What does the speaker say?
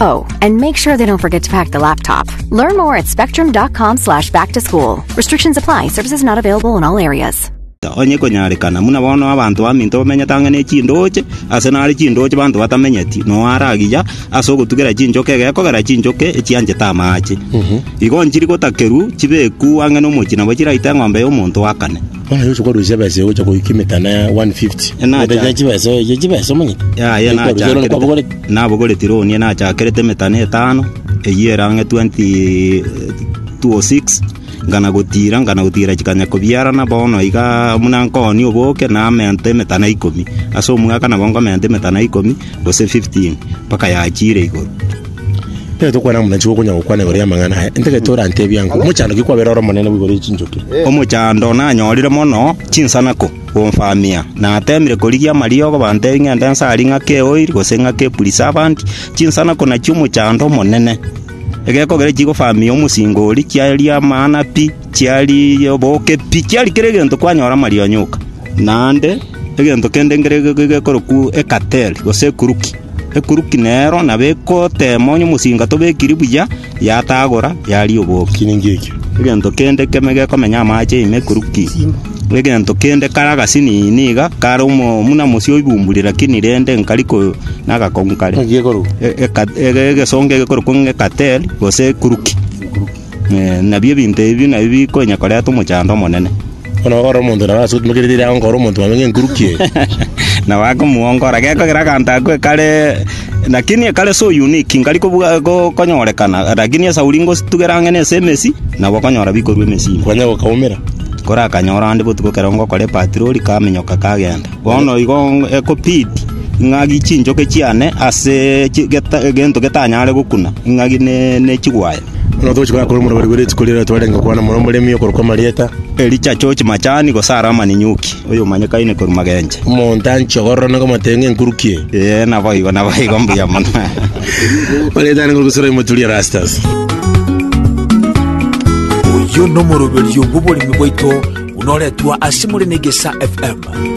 Oh, and make sure they don't forget to pack the laptop. Learn more at spectrum.com slash back to school. Restrictions apply. Services not available in all areas. onye konyarekana muna bono abanto baminto bamenyete ang'e ne chindoche ase nare chindoche banto batamenyeti no aragiya ase ogotugera chinchoke egekogera chinchoke echianchete amache igo nchiri gotakerwu chibeku ang'e nomochi nabo chiraite eng'ombe y'omonto akane Bono Yoshua korusia ebesa eye gocha goika emetano ya 150. Ena Egento acha- kia chibesa oye, kia chibesa omanyete? Yaya Ekero Yoshua none nachakerete kwabogoretie. nabogoretie roni nachakerete emetano etano eyio erange 20 206 ngana gotira ngana gotira chikanya kobiarana bono iga muna nkooni oboke namenta emetana ikomi ase omwaka nabo nkomenta emetana ikomi gose 15 mpaka yachire igoro Ekero tokwana buna nigo okonya gokwana igoro y'amang'ana aya, intwe gete orantebie ang'o? Omochando ki kwabera ore omonene boigo ore chinchoki? Omochando nanyorire mono chinsanako gomfamia, natemire korigia amariogo bantebie ng'ende nsare ing'ake eoiri gose ing'ake epurisavant, chinsanako nachio omochando omonene. Egekogera chigofamia omosinga oria chiaye riamana pi. Chiari oboke pi, chiari kera egento kwanyora amarionyo oka. Naende egento kende nkere gekorokwa ekateli, gose ekuruki. Ekuruki nero nabo egotema onye omosinga tobekiri buya, yatagora yaria oboke. Egento kende keme gekomenya amache ime ekuruki, egento kende kare agasinini iga, kare omo buna mosio oibumburi lakini rende nkari ko na agakongu kare. Eka- ege- egesongo egekorokwa ng'a ekateli, gose ekuruki. Nabio ebinto ebi nabio bikonya koreta omochando omonene. Bono ore omonto nabo ase omokerete ere aonga ore omonto mwabe ng'enkuruki eye. Na bakamoongora, gekogera aganto ako ekare, lakini ekare so unique, nkari kobua- ko- konyorekana, lakini esauri ngositugera ang'e na ase emesi, nabo okonyora bikorwa emesi ime. Okanya gokaumera. Kore akanyora ande botuko ekero ngokora epatirori kamenyoka kagenda. Bono igo ng- ekobidi ng'agi chinchoke chiane ase chi- geta- egento getanyare gokuna, ng'agi ne- ne chigwaye. Ng'a tochi koyakora omorweri bwe rituko riaye twarenge kwana mono omoremi okorokwa Marieta. Elija achoche machani gose are amaninyuki, oyomanyekaine korwa magenche. Omonto anchia ogorora na komatee ng'enkuruki eye. Ee, naboigo, naboigo, mbuya mono. Marieta arenge orogusera oimotu ria Erastus. Oyio nomoroberio bw'oboremi bwaito buna oretwa ase more na Egesa FM.